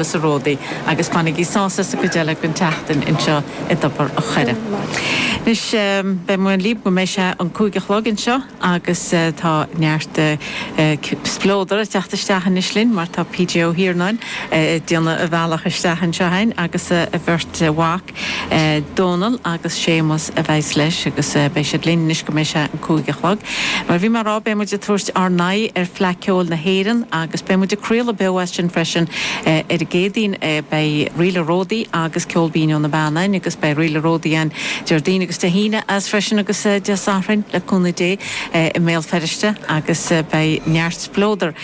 as a ródaí agus fanaigí sásta sa gcuid eile den tseachtain anseo i dTobar an Choire. Anois, beidh mé libh go mbeidh sé an cúig a chlog anseo agus tá neart spleodair ag teacht isteach anois linn mar tá PJ Ó hIarnáin ag déanamh a bhealach isteach anseo againn agus a bheirt mhac, Dónall, agus Séamus a bheidhs leis agus beidh siad linn anois go mbeidh sé an cúig a chlog. Mar bhí mé a' rá, beidh muid a' tabhairt ár n-aghaidh ar Fleadh Ceoil na hÉireann agus beidh muid a' craoladh beo as sin freisin ar an gCéadaoin. Beidh Ríl a' Ródaí agus Ceol Binn ó na Beanna a'inn agus beidh Ríl a' Ródaí a'inn Déardaoin agus Dé hAoine as freisin agus Dé Sathairn le cúnamh Dé i mBéal Feirste agus beidh neart spleodar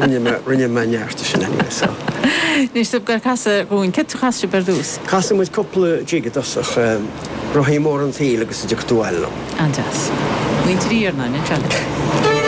Rinne mé, rinne mé neart de sin anyway so. Anois sibh ag casadh dhúinn, céard a chas sibh ar dtús? Chas muid cúpla jig i dtosach, Rothaí Móra an tSaoil agus Idir Cnó Ailleann. An-deas. Muintir Iarnáin, an sean.